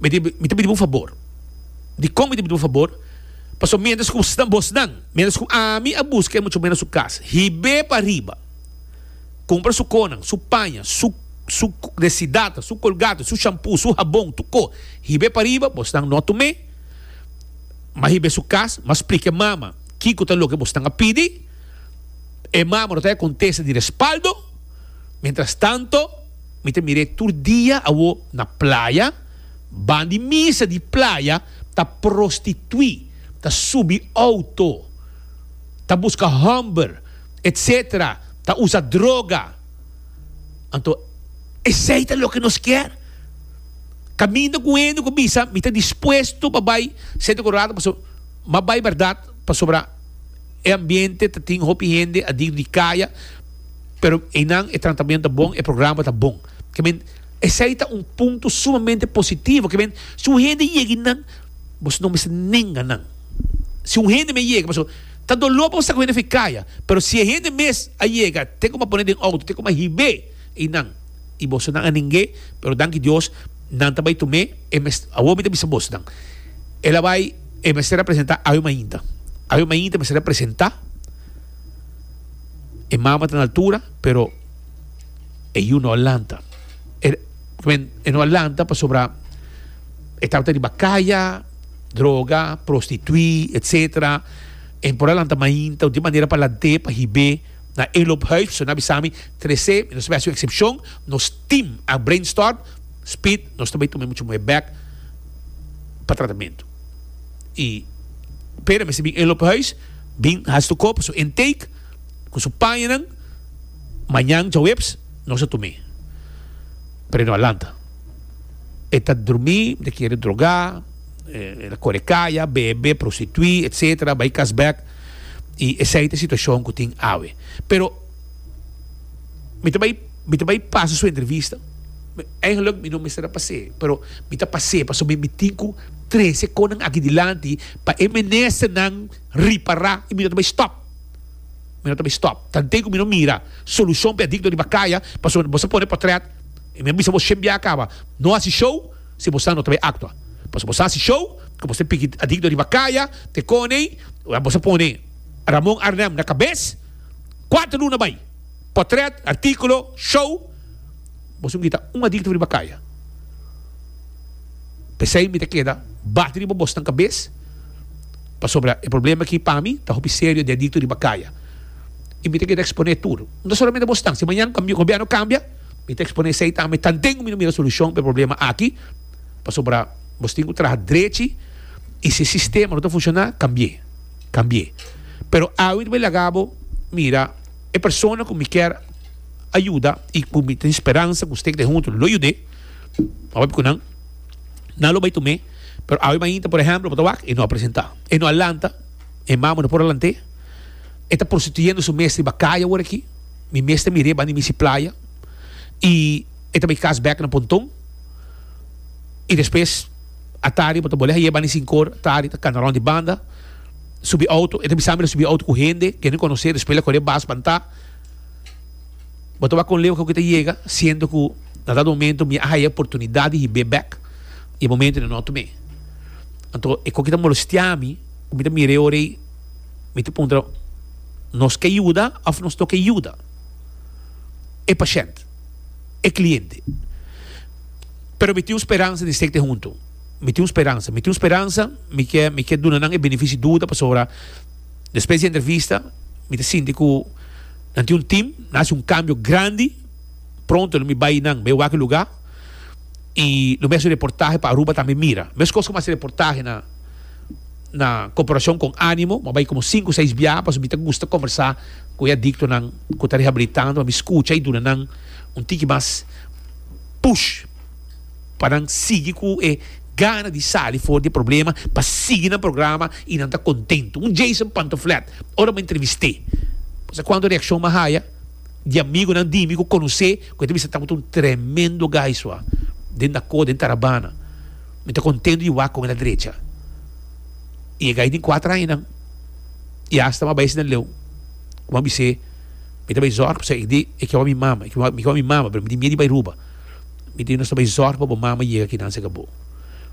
Mi ta mi ta pidi bo un fabor. Dikon mi ta pidi bo un fabor? Pasobra miéntras ku bosnan bosnan miéntras ku ami a buska e muchakunan na su kas hib'é pariba kumpra su konan, su paña, su su desidata, su kolgate, su shampu, su habon, tur ko hib'é pariba bosnan no tum'é mas hib'é su kas mas splika e mama kiko ta loke bosnan a pidi e mama no ta e kontesta di respaldo miéntras tanto. Mi ta mir'é tur dia awo na playa. Ban di misa di playa ta prostituí, ta subi outo, ta buska hòmber, etc. Ta usa droga. Anto esei ta loke nos kier? Kaminda ku hende ku bisa, Mi ta dispuesto pa bai Sento Kolorado, pasobra mi a bai bèrdat, pasobra. E ambiente ta tin hopi hende adir di kaya, pero einan e tratamiento ta bon, e programa ta bon. Ke men, esei ta un punto sumamente positivo, ke men, si un hende yega einan, boso no mester nenga nan. Si un hende mes yega, pasobra ta doló pa bo sa ku hende a fai kaya, pero si e hende mes a yega, te koma poné den outo, te koma hib'é einan. y bosonan a ninge pero danki Dios nan ta bay tume e mes awor mi ta bisa bosonan el a bay e mester a presenta awe mainta awe mainta mester a presenta e mama ta na altura pero e yu no a lanta e men e no a lanta pasobra e tawata riba kaya droga prostitui etcetera e por a lanta mainta di manera pa lante pa hibe Na Eloop Huis so na bisa mi, Trece, mi no sabia su excepcion, nos team a brainstorm, Speed, nos ta bai tuma e mucha muhe bek pa tratamento. Y Pere mester bin Eloop Huis, bin haci su kop, su intake, cu su pañanan, mañan djaweps nos a tume. Pero e no a lanta. E ta drumi, mi ta kere droga, e ta core kaya, bebe, prostitui, etc. Bai cas bek. y esey ta situacion cu tin awe. Pero mi ta bay mi ta bay pasa su entrevista, eigenlijk mi no mester a pas'e, pero mi ta pas'e pasobra mi tin cu trece conan aki dilanti pa e menesternan ripara y mi no ta bay stop, mi no ta bay stop, tanto cu mi no mira solucion pa e adicto riba caya, pasobra boso pone potret y mi a bisa bo shen bia a caba, no haci show. si bo sa no ta bay actua pasobra bo sa si show cu bo se piki adicto riba caya te coney a bo sa pone Ramon Arnel na cabez cuater luna bay potret articulo show bo su mita un adicto riba caya pesey mi ta keda bati riba bos nan cabez pasobra e problema aki pa mi ta hopi serio di adicto riba caya y mi ta keda expone tur no ta solamente bos nan si mañan gobierno cambia. Mi ta expone esey taha, mi ta den mi no mira solucion pa e problema aki, pasobra nos tin cu traha drechi y si e sistema no ta funciona cambi'e, cambi'e. Pero awe mi ta bay laga bo, mira, e persona cu mi kier ayuda y cu mi tin speransa cu usted ta bay hunto lo yud'e, a papi cu nan, nan lo bay tu me, pero awe mainta, por ehemplo, bo ta wak, e no a presenta, e no a lanta, e mama no por a lant'e, e ta prostituyendo su mes riba caye aworaki. Mi mes ta mir'é banda di misi playa i e ta bai kas bèk na ponton. I despues atari bo ta bol'é hai'é banda di sinku or, atari ta kana rònt di banda, subi outo. E ta bisa mi lo subi outo ku hende ku e no konosé, despues lo kore bas bantá. Bo ta wak kon leu hokiko e ta yega, siendo ku na dado momento mi a haya e oportunidat di hib'é bèk i e momento no e nota mi. Anto e kon ku ta molestiá mi, ku mi ta mir'é ora ei. Mi ta puntra, Nos ke yuda of nos no ke yuda e pashent, e kliente? Pero mi tin un speransa di sekte huntu. Mi tin un speransa, mi tin un speransa, mi ke mi ke duna nan e benefisio duda pasobra despues di e entrevista mi ta sinti ku nan tin un tim, nan hasi un kambio grandi. Pronto lo mi bai nan bai wak e luga i lo mi hasi un reportahe pa Aruba tambe mira. Meskos ku mi hasi reportahe na. na cooperacion con animo, m'a bai como cinco seis biaha pasobra mi ta gusta conversa cu e adictonan cu ta rehabilitando pa mi scucha y duna nan un tiki mas push pa nan sigui cu e gana di sali for di e problema pa sigui nan programa y nan ta contento. Un Jason Pantoflet ora m'a entrevist'e pasobra cuanto reaccion m'a haya di amigonan dimi cu conoc'e cu e ta bisa tabata un tremendo guy sua den Dacó den Tarabana. Mi ta contento di wak con el a drecha. I e gai tin cuatro añanan i hasta m'a bai asina leu. Como a bis'é, mi ta bai zorg pasobra e di e kiawa mi mama, e kiawa mi kiawa mi mama, pero mi tin miedu di bai Aruba. Mi di nos ta bai zorg pa bo mama yega akinan serka bo.